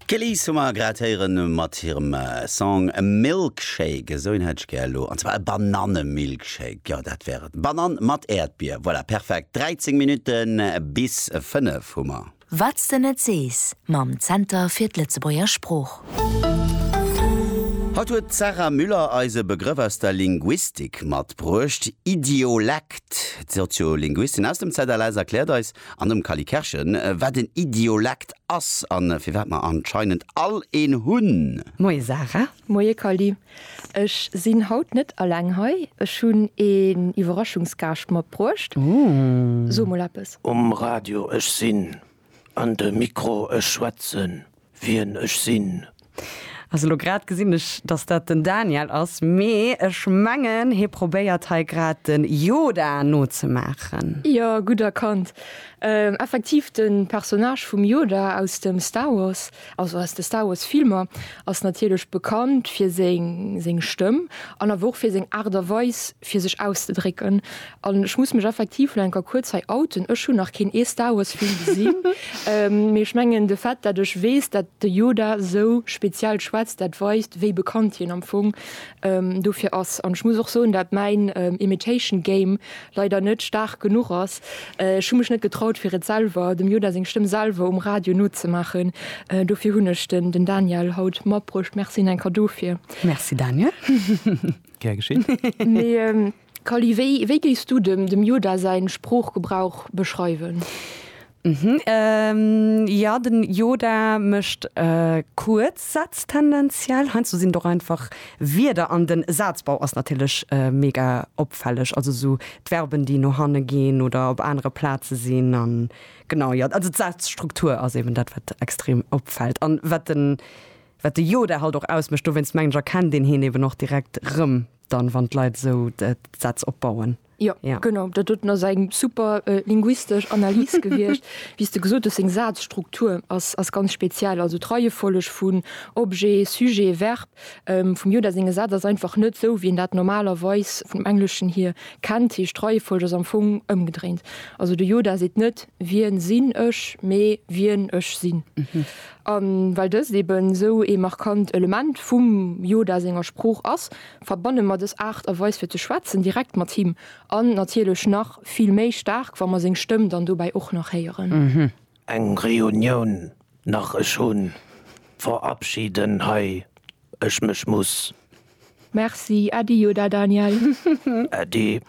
D'Kellys hu mer grad héieren mat hirem Song Milkshake, esou een hätt ech gär elo, an zwar e Bananne-Milkshake, jo dat wär et, Banann mat Äerdbier, voilà, perfekt. 13 Minutte bis 5 hu mer. Wat s de net sees mam Zenter fir d'Lëtzebuerger Sprooch. Haut huet d'Sarah Müller eis e Begrëff aus der Linguistik matbruecht, Idiolekt. D'Soziolinguistin aus dem ZLS erkläert eis, An dem Kally Kerschen, wat en Idiolekt ass a firwat mer anscheinend all een hunn. Moie Sarah. Moie Kally. Ech sinn haut net alleng hei, ech hunn een Iwwerraschungsgaascht matbruecht. So mol eppes. Um Radio, ech sinn. An de Mikro, ech schwätzen. wien ech sinn. Also lo grad gesinn ech dass dat den Daniel ass, mee ech mengen hie probéiert hei grad den Yoda nozemaachen. Jo, gutt erkannt. Effektiv, de Personnage vum Yoda aus dem Star Wars, also aus de Star Wars Filmer, ass natierlech bekannt fir seng Stëmm an awer och fir seng Aart a Weis fir sech auszedrécken. An ech muss mech effektiv lo enker kuerz hei outen, ech hunn nach keen ee Star Wars Film gesinn, mee ech mengen de Fait dat ech weess dat de Yoda sou speziell schwätzt, dat weist wéi bekannt hien am Fong dofir ass. An ech muss och soen dat mäin Imitation Game leider net staark genuch ass, ech hu mech net getraut fir et selwer, dem Yoda seng Stëmm selwer um Radio nozemaachen, dofir hunn ech den den Daniel haut matbruecht. Merci enker dofir. Merci Daniel. Gär geschéen. Kally, wéi géifs du dem dem Yoda säin Sproochgebrauch beschreiwen? Hm, jo, den Yoda mécht kuerz Sätz tendenziell. Heiansdo sinn et och einfach Wierder. An den Sazbau ass natierlech mega opfälleg, also sou d'Verben déi no hanne ginn oder op anere Plaze sinn. An genau, jo, also d'Sazstruktur ass eben dat wat extrem opfällt an wat den wat de Yoda halt och ausmécht. Dowéinst mengen ech erkennt een hien eben och direkt rëm. Dann wann d'Leit esou d'Sätz opbauen. Jo, genau, dat doten ass eng super linguistesch Analys gewiescht. Wéi s de gesot hues, seng Sazstruktur ass ganz speziell, also d'Reiefolleg vun Objet, Sujet, Verb. Vum Yoda senge Sätz ass einfach net esou, wéi een dat normalerweis vum Engleschen hier kennt, heescht d'Reiefolleg ass am Fong ëmgedréint. Also de Yoda seet net, Wien sinn ech? mee, Wien ech sinn. A well dëst eben esou ee markant Element vum Yoda senger Sprooch ass, verbanne mer dës Aart a Weis fir ze schwätzen direkt mat him. An natierlech nach vill méi staark, wa mer seng Stëmm dann dobäi och nach héieren. Eng Reunioun nach, ech hu verabschiden hei ech mech muss. Merci Äddi jo da Daniel. Äddi.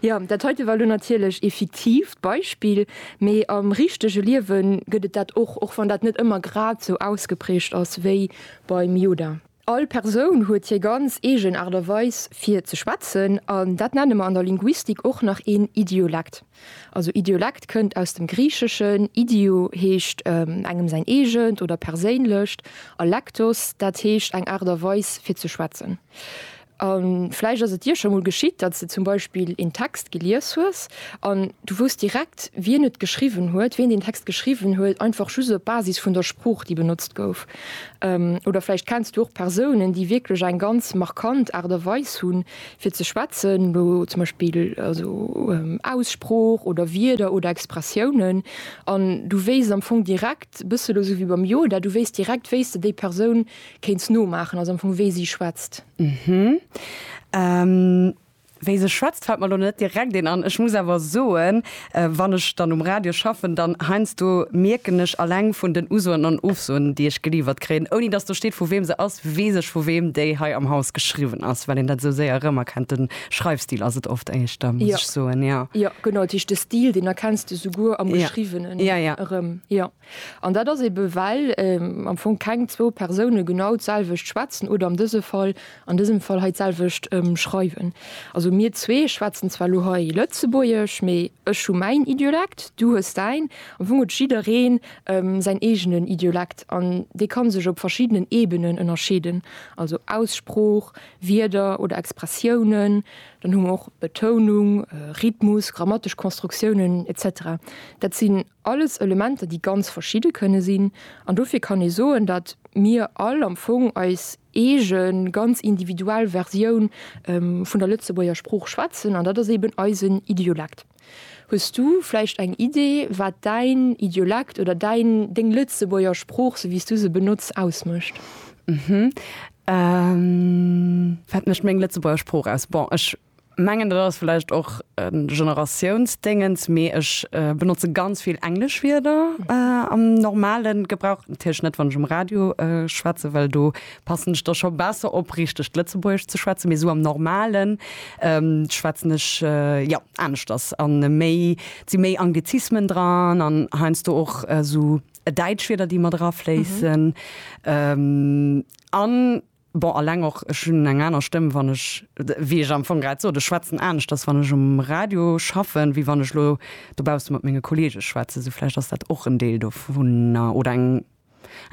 Jo, dat heite war lo natierlech ee fiktiivt Beispill, mee am richtege Liewe gëtt et dat och, och wann dat net ëmmer grad esou ausgeprägt ass wéi beim Yoda. All Persoun huet hir ganz eegen Aart a Weis fir ze schwätzen, an dat nenne mer an der Linguistik och nach een Idiolekt. Also Idiolekt kënnt aus dem Griicheschen, idio heescht engem säin eegent oder perséinlecht a lektos, dat heescht eng Aart a Weis fir ze schwätzen. A vläicht ass et dir scho mol geschitt, datt s de zum Beispill een Text gelies hues an du wousst direkt, wien et geschriwwen huet, wien deen Text geschriwwen huet, einfach just op Basis vun der Sprooch, déi benotzt gouf. Oder vläicht kenns du och Persounen, déi wierklech eng ganz markant Aart a Weis hunn, fir ze schwätzen, elo zum Beispill also Aussprooch oder Wierder oder Expressiounen, an du wéisst am Fong direkt, e bësse elo sou wéi beim Yoda, du wéisst direkt, wéi s de déi Persoun kéints nomaachen, also am Fong wéi si schwätzt. Wéi se schwätzt fält mer elo net direkt een an. Ech muss awer soen, Wann ech dann um Radio schaffen, dann heiansdo mierken ech alleng vun den Usoen an Ofsoen, déi ech geliiwert kréien, ouni dass do steet, vu weem se ass, weess ech, vu weem déi hei am Haus geschriwwen ass, well een dat esou séier erëmerkennt. De Schreifstil ass et oft éischter, muss ech soen, jo. Jo, genau, dat heescht, de Stil, deen erkenns de souguer am Geschriwwenen erëm, jo. An dat ass ebe well am Fong keng zwou Persoune genau d'selwecht schwätzen oder am dëse Fall, an dësem Fall hei, d'selwecht schreiwen. Also mir zwee schwätzen zwar elo hei Lëtzebuergesch, mee ech hu mäin Idiolekt, du hues däin. Am Fong huet jidderee säin eegenen Idiolekt an dee ka sech op verschiddenen Ebenen ënnerscheeden, also Aussprooch, Wierder oder Expressiounen. Dann hu mer och Betounung, Rhythmus, grammatesch Konstruktiounen, etc. Dat sinn Alles Elementer, déi ganz verschidde kënne sinn. An dofir kann ee soen, datt mir all am Fong eis eege ganz individuell Versioun vun der Lëtzebuerger Sprooch schwätzen, an dat ass eben eisen Idiolekt. Hues du vläicht eng Idee, wat däin Idiolekt oder däin, deng Lëtzebuerger Sprooch, sou wéi s du se benotz, ausmécht? Wat mécht meng Lëtzebuerger Sprooch aus? Bon, ech mengen dat ass vläicht och e Generatiounsdéngens, mee ech benotze ganz vill englesch Wierder am normale Gebrauch, natierlech net wann ech um Radio schwätze, well do passen ech da scho besser op richtegt Lëtzebuergesch ze schwätzen, mee esou am normalen schwätzen ech jo aneschters an méi, et si méi Anglizismen dran an heiansdo och esou däitsch Wierder déi mat erafléissen an. Bon, alleng och, ech hunn eng aner Stëmm, wann ech, wéi ech am Fong grad sot, ech schwätzen aneschters, wann ech um Radio schaffen, wéi wann ech elo dobausse mat menge Kolleege schwätzen. Sou vläicht ass dat och en Deel dovunner oder eng,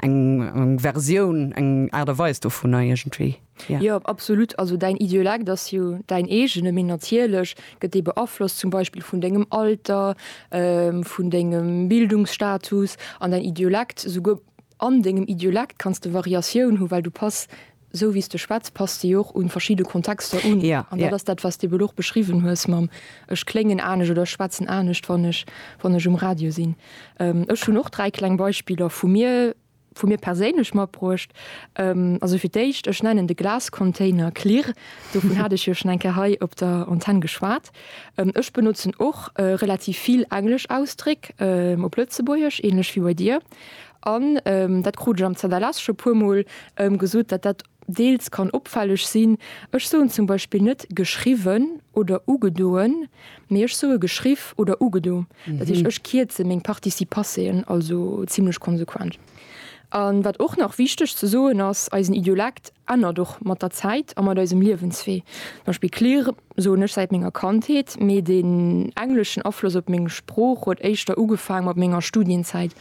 eng Versioun, eng Aart a Weis dovunner iergendwéi, jo. Jo, absolut. Also däin Idiolekt ass jo däin eegene, mee natierlech gëtt dee beaflosst zum Beispill vun dengem Alter, vun dengem Bildungsstatus an däin Idiolekt souguer, An dengem Idiolekt kanns de Variatioun hu well du pass, sou wéi s de schwätz, pass de jo och un verschidde Kontexter un. An dat ass dat wat s de bel och beschriwwen hues mam ech kléngen anescht oder ech schwätzen anescht wann ech wann ech um Radio sinn. Ech hunn och dräi kleng Beispiller vu mir vu mir perséinlech matbruecht. Also fir d'éischt, ech nennen de Glascontainer Klirr, dovun hat ech jo schon eng Kéier hei op der Antenn geschwat. Ech benotzen och relativ vill englesch Ausdréck op Lëtzebuergesch, ähnlech wéi bei dir. An dat krut ech am ZLS scho puermol gesot, datt dat deels kann opfälleg sinn. Ech soen zum Beispill net geschriwwen oder ugedoen, mee ech soe geschriff oder ugedo. Dat heescht, ech kierze meng Participasseen also zimmlech konsequent. A wat och nach wichteg ze soen ass, eisen Idiolekt ännert och mat der Zäit a mat eisem Liewenswee. Beispill, klirr, soen ech säit menger Kandheet, mee den engleschen Afloss op meng Sprooch huet éischter ugefaang mat menger Studienzäit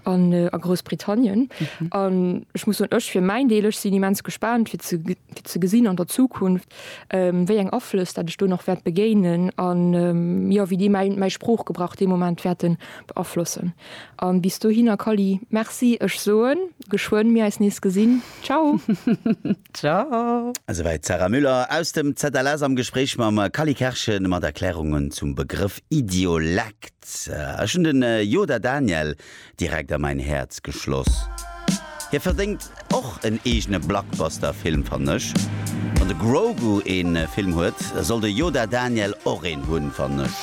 an a Groussbritannien. An ech muss soen, ech fir mäin Deel, ech sinn immens gespaant fir ze fir ze gesinn an der Zukunft wéi eng Aflëss dat ech do nach wäert begéinen an jo wéi déi mäin mäi Sproochgebrauch dee Moment wäerten beaflossen. An bis dohinner Kally, merci, ech soen geschwënn mir eis nees gesinn. Ciao! Ciao. Esouwäit d'Sarah Müller aus dem ZLS am Gespréich mam Kally Kerschen mat Erklärungen zum Begrëff Idiolekt. Ech hunn den Yoda Daniel direkt a mäin Häerz geschloss. Hie verdéngt och en eegene Blockbuster Film fannen ech. Wann de Grogu een Film huet, soll de Yoda Daniel och een hunn fannen ech.